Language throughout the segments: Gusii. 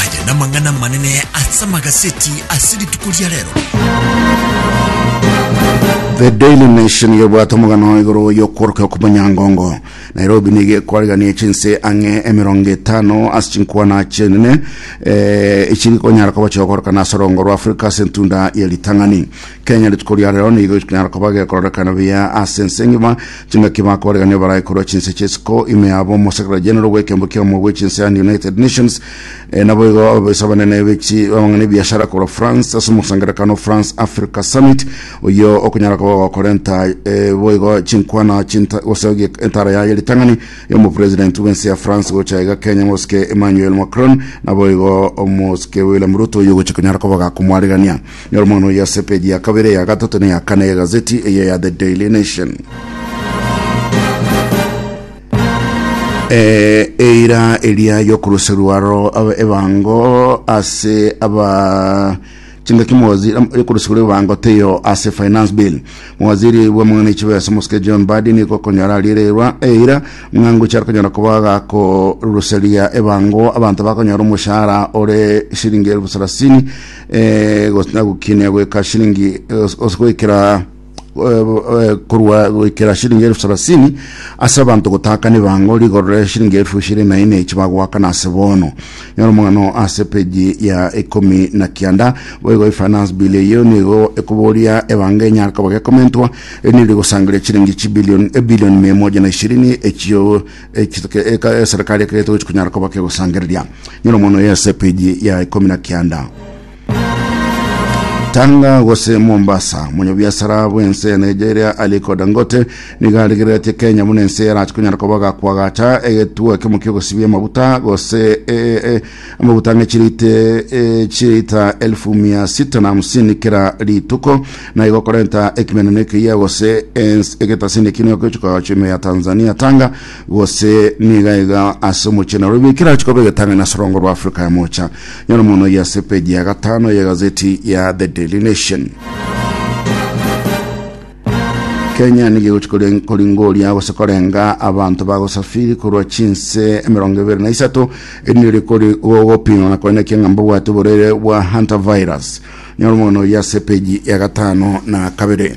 Aya namang'ana amanene ase amagaseti ase rituko ria rero. The Daily Nation gebwate omogano igoro y'okworoka okomanyangongo Nairobi nigo ekwarigania chinse ang'e emerongo etano ase chinkwana chienene eh, echiri konyara koba chigokorokana ase orongo rwa Afrika ase entunda ye ritang'ani Kenya rituko ria rero nigo ikinyara koba gekororekana buya ase ense engima chingaki bakoregania barae korwa chinse chisiko ime yabo omosekera general bw'ekembo ki'omo bwe chinse and United Nations e, nabo igo ababoisi abanene bechi abang'ana ebiashara korwa France ase omosangerekano France Africa Summit oyo okonyara koba gokorenta e, boigo chinkwana chinta gose ogie- entara yaye ritang'ani y'omopresident bw'ense ya France gocha iga Kenya mosike Emmanuel Macron naboigo omosike William Ruto oyo ogocha konyara koba gakomwaregania Nyora omwana oyo ase epeji ya kabere, eya gatato, na eya kane y'egazeti eye ya The Daily Nation. Eh, eira eria yokuruserwa aro aba- ebango ase aba chingaki mawaziri am- yokuruserwa ebango teyo ase finance bill mawaziri bwamang'ana echibesa mosike john badi niko konyora ariererwa eira ng'angu chari konyora koba gakoruseria ebango abanto bakonyora omoshahara ore shilingi elfu sarasini eh, gose nagokinia goika shilingi eh, os- os- goikera eh, eh, korwa goikera shilingi elfu sarasini ase abanto gotaka nebango rigorore shilingi elfu ishirini na ine echi bagoakana ase bono nyora omogano ase peji ya ikomi na kianda boigo ifinance bill eyo nigo ekoboria ebango enyare koba gekomentwa eri neri gosangeria chilingi chibilioni ebilioni mia moja na ishirini echio eserikari ekero etogochi konyara koba kegosangereria nyora omono ya sepeji ya ikomi na kianda Tanga gose Mombasa monyabiasara bw'ense ya Nigeria Aliko Dangote nigo arigereretie Kenya buna ense yarachi konyara koba gakwagacha egetuo ekemo ki'ogosibia amabuta gose e, e, Amaguta ang'e chirite eh, chirita elfu mia sita na hamsini kera rituko naigo okorenta ekimeneno ekiya gose ens egetasini ekino ekechuka chime ya Tanzania tanga gose niga iga ase omochie Nairobi ekira chikoba egetang'ani ase orongo rwa Afrika ya mocha nyora mono ya ase peji ya gatano ya gazeti ya The Daily Nation. Kenya nigo egochi kore- koringoria gose korenga abanto bagosafiri korwa chinse emerongo ebere na isato erinde rikori gogopimwa na koina ekianga mbabwate oborwaire bwa hunter virus nyora omogano oyo ase epeji ya gatano na kabere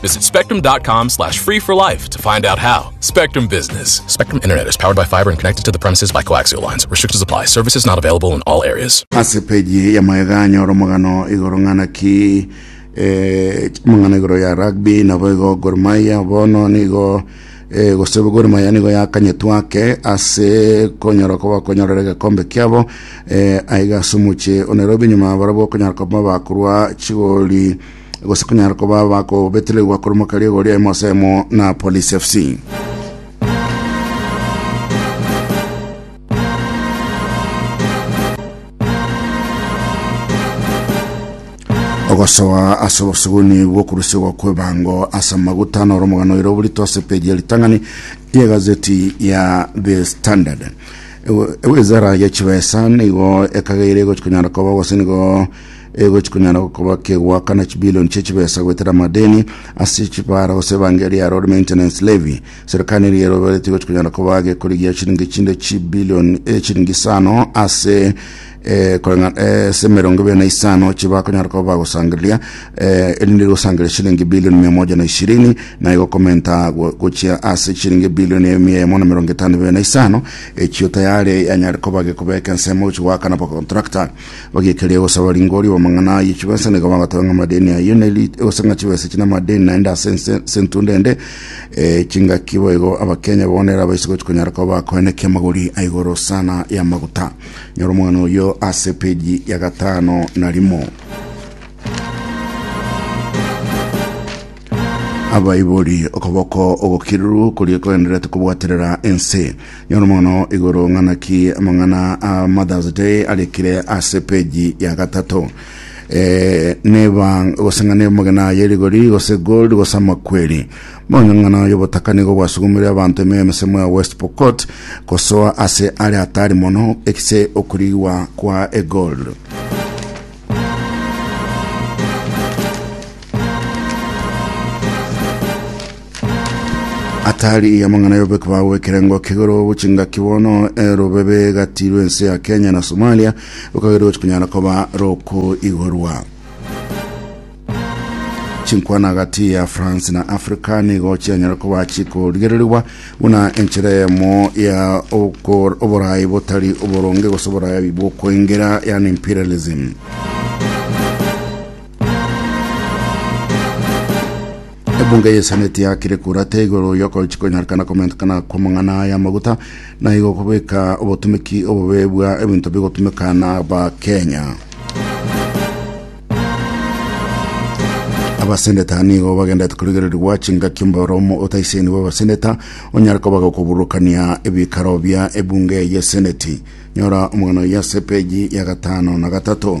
Visit spectrum.com slash free for life to find out how. Spectrum Business. Spectrum Internet is powered by fiber and connected to the premises by coaxial lines. Restrictions apply. Services not available in all areas. ase peji ya maega anyora omogano igoro ng'ana ki eh, omogano igoro ya rugby nabo igo Gor Mahia bono nigo eh, gose Gor Mahia nigo yakanyetwa ake ase konyora koba konyorera egekombe kiabo eh, aiga ase omoche o Nairobi nyuma barabwo okonyora koba bakorwa chigori gose kunyara koba abakobeteregwa korwa kariga oria emo ase emo na Police FC. ogosoa ase obosuguni bw'okorusigwa kw'ebango ase amaguta noro omogano oire oborito ase peji ya ritang'ani y'egazeti ya The Standard. Ewizara ya chibesa nigo ekageire gochikonyara koba gose nigo egochi konyara gokoba kegoakana chibilioni chie chibesa goetera amadeni ase chibara gose ebangeri ya road maintenance levy. Serikali eria eroberetie egochi konyara koba gekorigia chiringi chinde chibilioni eh, chiringi isano ase eh, koreng'a- eh, ase emerongo ebere na isano chibakonyara koba bagosangereria eh, erinde rigosangereria chiringi bilioni mia moja na ishirini naye gokomenta go- gochia ase chiringi bilioni emia emo na emerongo etano ebere na isano echio tayare yanyare koba gekobeka ensemo gochi goakana bakontrakta bagekeria gosaba ringori bamang'ana aye chibesa nigo bagateba ng'a amadeni ayio neri egoseng'a chibesa echi na amadeni naende ase ense ense entunda ende eh, chingaki boigo abakenya bonera abaise gochi konyara koba bakoenekia amagori a igoro sana ya maguta nyora omog'ano oyo ase peji ya gatano na rimo abaibori okoboko ogokiruru koria kogendererete kobwaterera ense Yono mono igoro ng'ana ki amang'ana a Mother's Day arikire ase peji ya gatato. Eh, neba gose ng'a neba mogena ya erigori gose gold gose amakweri. Monya ng'ana y'obotaka nigo bwasugumire abanto emioyo emisemo ya West Pokot gosoa ase are atari mono ekise okorigwa kwa egold. Atari iya mang'ana y'obobeki bwabo bw'ekerengo k'igoro bw'chingaki bono erobebe gati rw'ense ya Kenya na Somalia rukagerwa gochi kunyara koba rokoigorwa. Chinkwana gati ya France na Africa nigo chianyara koba chikorigererigwa buna enchera eyemo ya okor- oborayi botari oboronge gose oborayi bw'okoengera yani imperialism. Ebunga ya Seneti yakire kura tee igoro y'okochi konyarekana komentekana kw'amang'ana aya amaguta na igo kobeka obotumeki obobe bwa ebinto bigotumeka na Abakenya. Abaseneta nigo bagendete korigererigwa chingaki omboromo otaisaini bw'abaseneta onyare koba gokobururukania ebikaro bia ebunge ya Seneti. Nyora omogano yase peji ya gatano na gatato.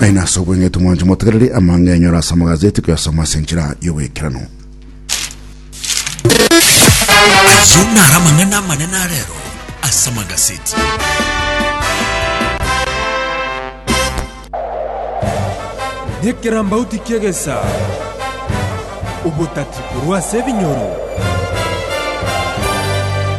Aye nase obweng'etu mwanche motegereri amang'e enyora ase amagazeti koyasoma ase enchera y'oboikeranu. Ayio naro amang'ana amanene arero ase amagaseti. Nekerambauti ki'egesaa. Obotati korwa ase ebinyoro.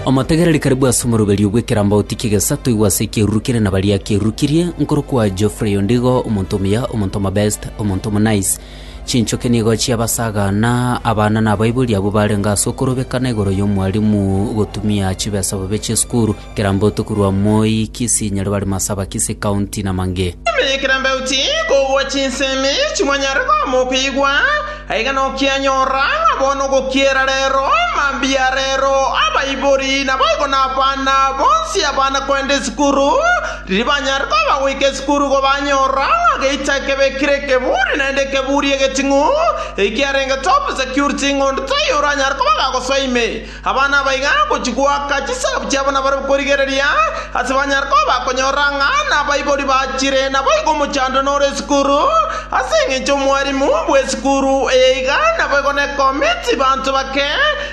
Omotegereri kare bw'ase omoroberio bw'ekerambauti ki'egesato igwa ase ekieruru kere na baria kierurukirie, nkorokwa Geoffrey Ondigo, omonto omuya, omonto omobest, omonto omonice. Chinchoki nigo chiabasaga na abana na abaibori abwo barenge ase okorobekana igoro y'omwarimu gotumia chibesa bobe chi'esukuru. Kirambo tokorwa Moi, Kisii, Nyaribari, Masaba, Kisii County na mange. Ime ye Kirambo uti kogwa chinsemi chimwanyare koama okoigwa, aiga nokianyora ng'a bono ogokiera rero, mambia rero, abaibori naboigo nabana bonsi abana koenda esukuru, riria banyare koba goika esukuru igo banyora ng'a geita ekebe kire ekeburi naende ekeburi egeting'u, ekiarenge top security ng'onto toiyo oranyare koba gagosoa ime. Abana aba iga gochia goaka chisahabu chiabo nabarabwo korigereria, ase banyare koba bakonyora ng'a nabaibori bachire naboigo omochandwe nore esukuru, ase engencho omwarimu bw'esukuru eye iga naboigo nekomiti banto bake,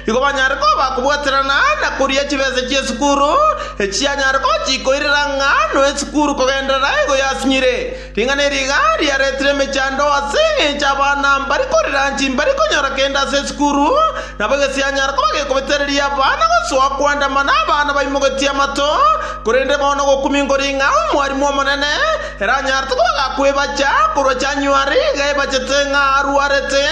igo banyare koba bakobwaterana na koria chibesa chi'esukuru, echi chianyare gochia koirera ng'a noe esukuru kogenderera igo yasinyire. Ring'ana eri iga riaretire emechando ase engencho abana mbari korera inche imbari konyora kende ase esukuru, nabo egesianyara koba gekobetereria abana gosoa koandamana abana baimogetie amato, korende bono ogokumia nkori ng'a omwarimu omonene eranyarete kobaga kwebacha korwa January iga ebachete ng'a arwarete,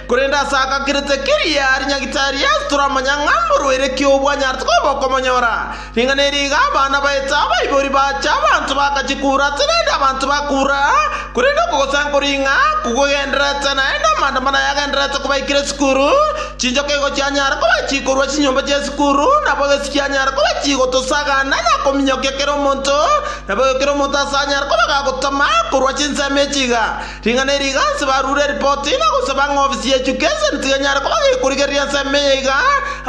korende ase agakirete keria ari nyagitari ase toramanya ng'a mborwaire ki obwanyarete koba okomonyora. Ring'ana eri iga abana baetsa abaibori bache, abanto bakachia kuratsa naende abanto bakura, korende okogosankora ing'a kogogendererete naende amaandamano ayagendererete kobaikire esukuru, chinchoka igo chianyara kobachia korwa chinyomba chi'esukuru, nabo egesi kianyara kobachia gotosagana na kominyokia kera omonto, nabo kera omonto ase anyare koba gagotama korwa chinsemo echi iga. Ring'ana eri iganse barure eripoti na gosaba ng'a ofisi ya education tiga enyare koba gekorigereria ensemo eye iga,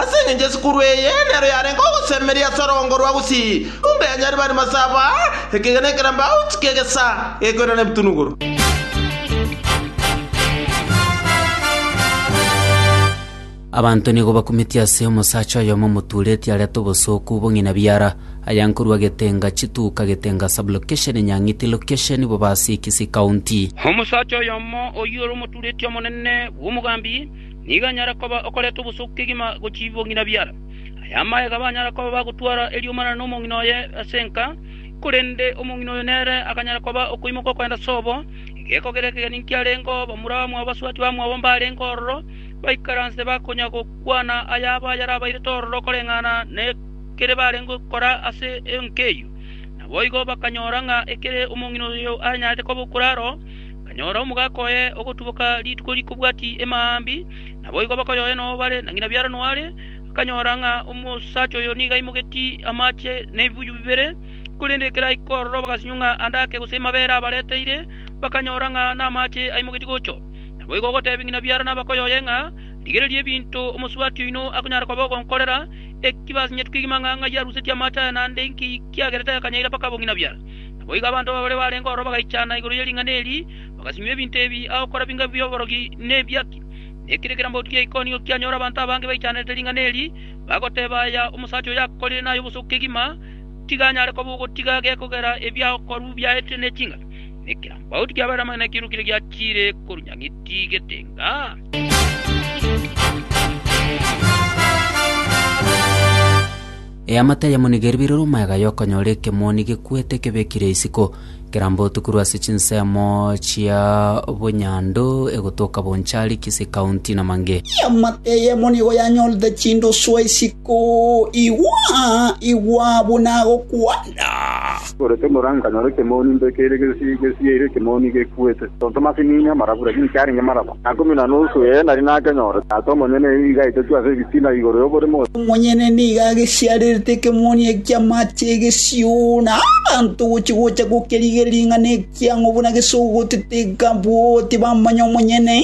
ase engencho esukuru eye nero yarenge ogosemeria ase orogongo rwa Gusii, runda ya Nyaribari Masaba, ekegena ekerambauti kegesa gekoirana ebitunuguru. Abanto nigo bakumetie ase omosacha oyomo omotuureti arete obosooku bong'ina biara, aya nkorua Getenga Chituka, Getenga Sub-location, Nyang'iti Location, Bobasi-Kisii County. Omosacha oyomo oyio ore omotuureti omonene bw'omogambi nigo anyare koba okoreta obosooku kegima gochia bong'ina biara. Aya amaega banyara koba bagotwara eriomarana nomong'ina oye ase enka, korende omong'ina oyo nere akanyara koba okoimoka okogenda sobo, egekogera ekegeni nkiarengeo, bamura bamwabo, basubati bamwabo mbarenge ororo, baikaranse bakonya gokwana ayabo ayarabairete ororo koreng'ana nekere barenge gokora ase enka eyio. Naboigo bakanyora ng'a ekere omong'ina oyo aranyarete koba okure aro, akanyora omogaka oye ogotuboka rituko rikobwati emambia, naboigo bakoyoyana oo bare, na ng'ina biarano are, akanyora ng'a omosacha oyo nigo aimogetie amache nebibuyu bibere, korende ekero aika ororo bagasinywa ng'a ande ake gose amabere abareteire, bakanyora ng'a namache aimogetie gocha. Naboigo ogotebia ng'ina biara nabakoyoye ng'a, Rigereria ebinto omosubati oino akonyara koba ogonkorera, eki basinyetu kegima ng'a ng'ai arusetie amaache aya naende inki kiagerete akanyaira mpaka bong'ina biara. Naboigo abanto babere barenge ororo bagaichana igoro ye ring'ana eri, bagasinywa ebinto ebi agokora binga bi'oborogi na ebiaki. Na ekero ekerambaoti kia Ikonio kianyora abanto abange baichanerete ring'ana eri, bagoteba, Aya omosacha oyo akorire nay'obosuku kegima, tiga anyare koba ogotiga gekogera ebiagokorwa biaetire ne chingaki. na ekeambaotu kiabaeire amang'ana ekero kire giachire korunyang'iti getenga. Eamate yamonige ribirire omoyaga yokonyora ekemoni gekwete kebekire isiko, kerambotu korwa ase chinsemo chia obonyandu egotoka Bonchari, Kisii County na mange. Eamate y'emoni igo yanyorete chinduswa isiko, Igwa, igwa, buna agokwanda! Ore tomoranga nyora ekemoni mbe kere gesi gesieire ekemoni gekwete. Tonto masi ninya amarabu, lakini kiarenge maraba na ikomi na nusu ee nari nakenyore. Tata omonyene nigo igaetetwe ase ebitina igoro y'oborimo. Omonyene nigo agesiarerete ekemoni eke ki'amache egesio, na abanto gochia gocha gokerigeria ring'ana ekiang'u buna gesogotete, ekabua obotiba amanya omonyene.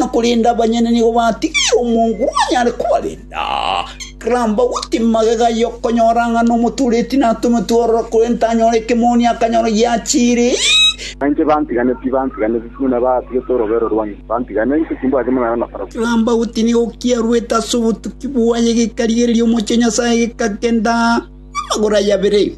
na korende abanyene nigo batigire omongu onyare kobarenda. Karamba goti magega y'okonyora ng'a nomotuureti natometwe ororo, korende tanyore ekemoni akanyora giachiire. Nainche bantiganeti, bantiganeti, buna batigete orobeero rwane, bantiga, nainche timbwati monana nabarabwo. Karamba goti nigo kiarwete ase obotuki bwaye gekarigereria omochie o Nyasae gekagenda namagoro aye abere.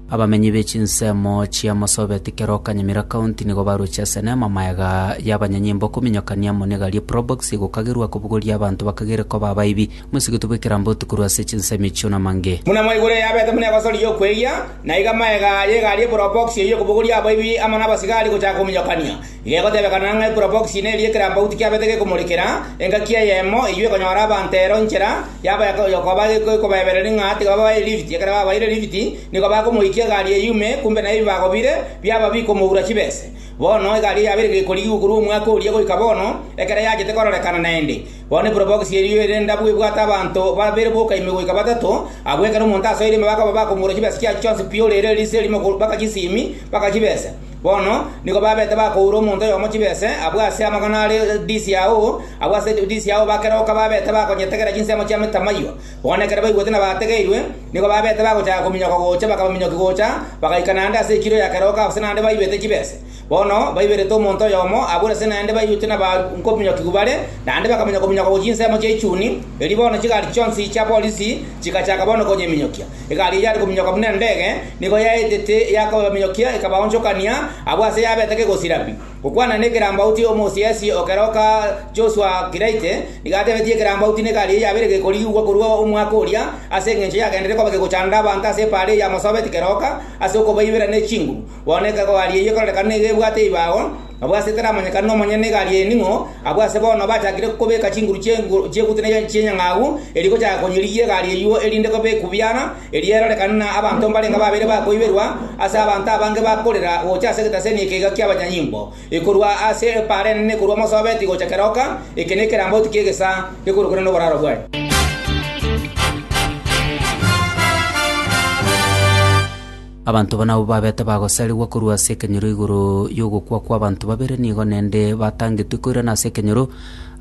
Abamenyi be chinsemo chia Marsabit kera o Kanyamira County nigo barochire ase eneema magega y'abanyanyimbo kominyokania amo negari e probox egokagerwa kobugoria abanto bakagere koba abaibi. Moisegetwe bwekerambe otu korwa ase chinsemo echio na mang'e. Buna mwaigure yabete buna egosori y'okweiria, naiga magega y'egari e probox eyio ekobugoria abaibi amo na abasigari gochaka kominyokania. Gegotebekana ng'a ekurabokisi ime eria ekerambauti kiabete gekomorikera, engaki eyemo eyio ekonyora abanto ero inchera yabo y'okoba ekobaebereria ng'a tibabae lift. Ekero babaire lift, nigo bakomoikia egari eyio ime, kumbe na ebibago bire biabo bikomoura chibese. Bono egari eyio yabeire gekorigigwa korwa omwaka oria goika bono, ekero yachete kororekana naende. Bono ekurabokisi eyio ere ndabu ebwate abanto babere boka ime goika batato, abwo ekero omonto asoire ime bakoba bakomoura chibesa chiachio chionsi pi ore ere riise erimo baka chisimi, baka chibese. Bono nigo babete bakoura omonto oyomo chibese, abwo ase amagana are disi yao, abwo ase disi yao bakeroka babete bakonyetegera chinsemo chia metamaiywa. Bono ekero baigwete na bategeirwe, nigo babete bagochaka kominyoka gocha, bakaba minyoki gocha, bagaika naende ase ekiro ya keroka gose naende baibete chibese. Bono baiberete omonto oyomo, abwo ase naende baigwete na bakominyokigwa bare, naende bakaminyoka-minyoka gochia insemo chia ichuni, erio bono chigari chionsi chia polisi chigachaka bono konyeminyokia. Egari eyio yare kominyoka buna endege, nigo yaetete yakobaminyokia, ekabaonchokania abwo aase yabete kegosira pi. Gokwana nekerambauti omosiasie o keroka Joshua Kiraite nigo atebetie ekerambauti n'egari eyio yabeire gekorigigwa korwa omwaka oria ase engencho yagenderire koba gegochanda abanto ase epaara eyio yamosobeti keroka ase okobaibera nechinguru. Bono egari eyio ekorerekana nigo ebwate ebibago Abwo ase taramanyekane nomonyene igari eye ning'o, abwo ase bono bachakire kobeka chinguru chi'egutwa ne chi'enyang'au erio gochaka konyirigia egari eyio erinde kobekwe biana, erio erorekane na abanto mbarenge babere bakoiberwa ase abanto abange bakorera gocha ase egetaseni eke iga ki'abanyanyimbo, ekorwa ase epaara enene ekorwa Mosobeti gocha keroka, eke nekerambauti ki'egesaa gekorokana noboraro bwaye. Abanto aba nabwo babete bagosarigwa korwa ase ekenyoro igoro y'ogokwa kw'abanto babere, nigo nende batangetwe koirana ase ekenyoro,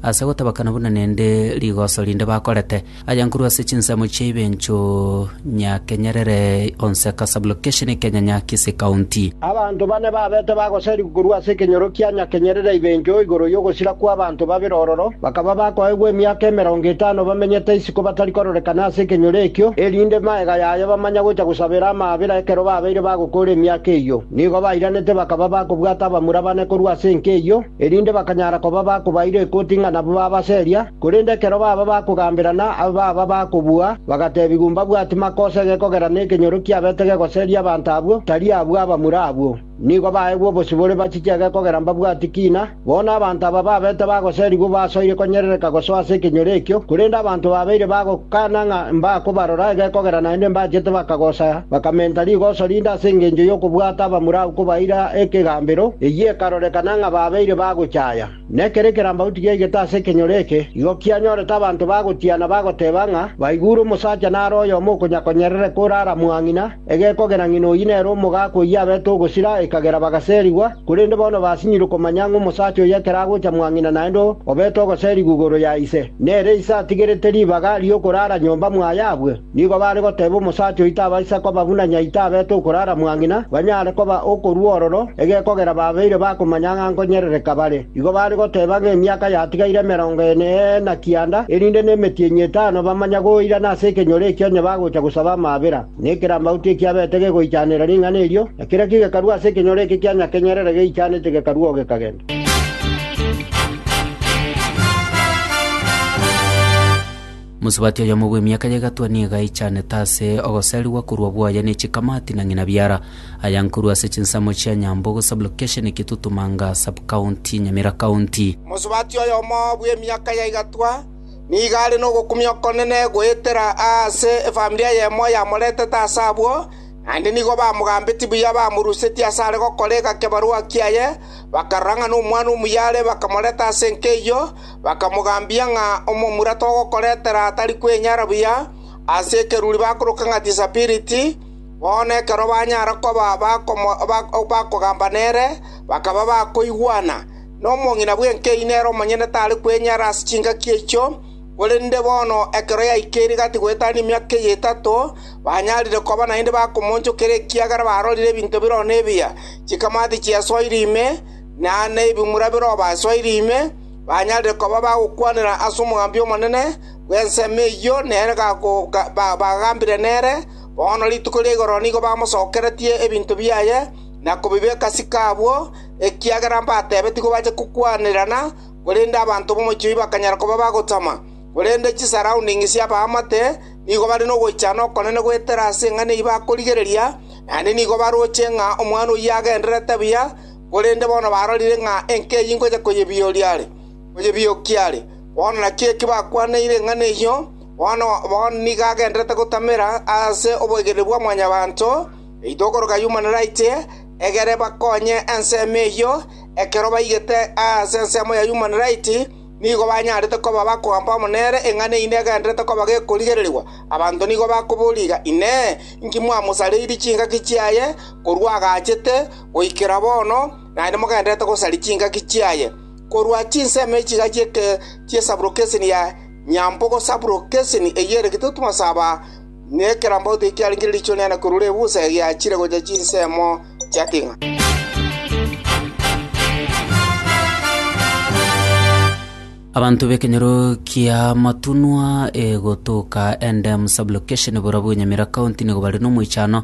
ase gotabakana buna nende rigoso rinde bakorete. Aya nkorwa ase chinsemo chia Ibencho Nyakenyerere Onseka Sub-location Kenya Nyakisi County. Abanto bane babete bagosarigwa korwa ase ekenyoro kia Nyakenyerere Ibencho igoro y'ogosira kw'abanto babere ororo, bakaba bakoegwa emiaka emerongo etano bamenyete isiko batari kororekana ase ekenyoro ekio, erinde maega yaye tibamanya gocha gosabera amaabera ekero babeire bagokora emiaka eyio. Nigo bairanete bakaba bakobwata abamura bane korwa ase enka eyio, erinde bakanyara koba bakobaira ekoti ng'a nabwo babaseria, korende ekero baba bakogamberana abe baba bakobua, bagatebiwa, Mbabwati makosa egekogera nekenyoro kiabete gegoseria abanto abwo, tari abwo abamura abwo. Nigo baegwe obosibore bachichege kogera mbabwati kiina. Bono abanto aba babete bagoserigwa basoire konyerereka gosoa ase ekenyoro ekio, korende abanto babeire bagokana ng'a mbakobarora ege kogera naende mbachete bakagosa bakamenta rigoso rinde ase engencho y'okobwata abamura agwo kobaira ekegambero, eyio ekarorekana ng'a babeire bagochaya. Na ekero ekerambauti giaigete ase ekenyoro eke, igo kianyorete abanto bagotiana bagoteba ng'a baigure omosacha nare oyomo okonyakonyerereka ore aramwang'ina, egekogera ng'ina oyio nere omogaka oyio abete ogosira, ekagera bagaserigwa, korende bono basinyirwe komanya ng'a omosacha oyio ekero agocha mwang'ina naende obete ogoserigwa igoro ya ise, nere ise atigerete ribaga ri'okorara nyomba mwaye abwe. Nigo baare goteba omosacha oito abaisa koba buna nyaito abete okorara mwang'ina, banyare koba okorua ororo, egekogera babeire bakomanya ng'a nkonyerereka bare. Igo baare goteba ng'a emiaka yatigaire emerongo ene ee na kianda, erinde nemetienyi etano bamanya goirana ase ekenyoro ekio onye bagocha gosaba amaabera. Na ekerambauti ekio abete gegoichanera ring'ana erio, na kera ki gekarua ase ekenyoro eke kia nyakenyerere geichanete gekarua oo gekagenda. Mosubati oyomo bw'emiaka y'egatwa nigo aichanete ase ogoserigwa korwa bwoye ne chikamati na ng'ina biara, aya nkorwa ase chinsemo chia Nyambogo Sub-location Kitutumanga Sub-county Nyamira County. Mosubati oyomo bw'emiaka ya egatwa nigo are nogokumia okonene goetera aase efamiri eyemo yamoretete ase abwo, naende nigo bamogambetie buya bamorusetie ase are gokora egakebarua kiaye, bakarora ng'a nomwana omuya are bakamoreta ase enka eyio, Bakamogambia ng'a omomura togokoretera tari kwenyara buya ase ekeruri bakoroka ng'a Tisabiriti. Bono ekero banyare koba bakogamba nere, bakaba bakoigwana. Na omong'ina bw'enkeene ere omonyene tare kwenyara ase chingaki echio, korende bono ekero yaikeire gati goetania emiaka eye etato, banyarire koba naende bakomoonchokera ekiagera barorire ebinto biroo nebiya, chikamati chiasoire ime, na ebimura biroo basoire ime. banyare koba bagokwanera ase omogambi omonene bw'ensemo eyio nere bagambire nere, bono rituko ria igoro nigo bamosokeretie ebinto biaye na kobibeka ase chiko abwo, ekiagera mbatebetigwe bache kokwanerana, korende abanto b'omochie oyio bakanyara koba bagotama. Korende chisaroundings chi'abaamate nigo bare nogoichana okonene goetera ase eng'ana eyio bakorigereria, naende nigo baroche ng'a omwana oyio agendererete buya, korende bono barorire ng'a enka eyio ingocha koyebioria are, koyebiokia are. Bono naki eki bakwaniire eng'ana eyio, bono nigo agendererete gotamera ase oboikereri bwa Mwanyabaanto, eito okoroka Human Right, egere bakonye ensemo eyio, ekero baigete ase ensemo ya Human Right, nigo banyarete koba bakoamba amo nere, eng'ana eyio negendererete koba gekorigererigwa. Abanto nigo bakoboria iga, Inee! Inki mwamosareirie chingaki chiaye korwa agachete? Goikera bono, naende mogendererete gosaria chingaki chiaye, korwa chinsemo echiga chi'esaburokeseni ya nyambo gosaburokeseni eyio ere gitutu masaba, na ekerambauti ekiarenge riichoro riane korwa ribusa egiachire gochia chinsemo chia king'ana. Abanto b'ekenyoro ki'amatunwa gotoka Endem Sub-location Borobwo Nyamira County nigo bare nomoichano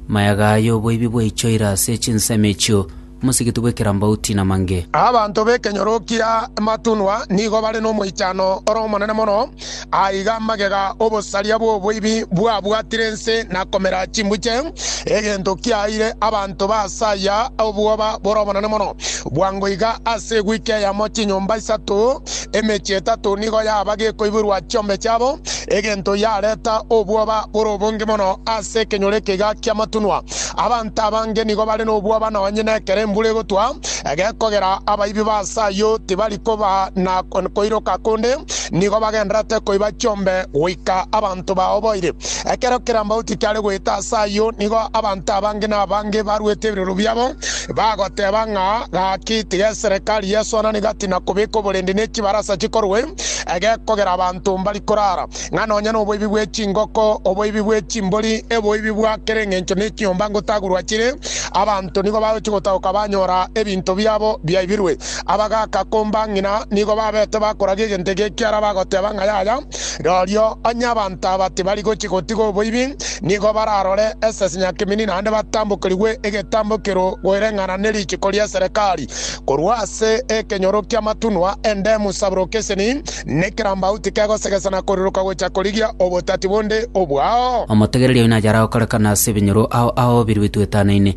mayaga y'oboibi bwaichoire ase chinsemo echio Mosigiti bw'ekerambauti na Mange. Abanto b'ekenyoro ki'amatunwa nigo bare nomoichano ore omonene mono Aiga amagega obosaria bw'oboibi bwabwatire ense na komera chimbuche, egento kiaeire abanto ba ase aya obwoba bore obonene mono. Bwango iga ase ewiki eyemo chinyomba isato, emechie etato nigo yaba gekoiborwa chiombe chiabo, egento yareta obwoba bore obonge mono ase ekenyoro eke iga ki'amatunwa. Abanto abange nigo bare nobwoba nonye nekero embura egotwa, gekogera abaibi ba ase ayio tibari koba na koiroka konde, nigo bagenderete koiba chiombe goika abanto bao boire. Ekero kerambauti kiare goeta ase ayio, nigo abanto abange na abange baruete ebiroro biabo, bagoteba ng'a, Gaki tigeserekari Yeso anani gati na kobeka oborendi ne chibarasa chikorwe, egekogera abanto mbari korara, ng'a nonya noboibi bwe chingoko, oboibi bwe chimbori, eboibi bwa kera engencho ne chinyomba ngotagurwa chire, abanto nigo bagochi gotagoka banyora ebinto biabo biaibirwe. abagaaka komba ng'ina nigo babete bakoragia egento eke ekiara bagoteba ng'a yaya. Rorio onye abanto aba tibari gochia gotiga oboibi, nigo bararore esese nyakeminini naende batambokerigwe egetambo kerogoereng'ana ne richiko ria Serekari korwa ase ekenyoro ki'amatunwa endemu sabrokeseni ne kerambauti kegosegesa na koriroka gochia korigia obotati bonde obwao. Omotegereria oino achare gokorekana ase ebinyoro ao ao biruetu etano ime.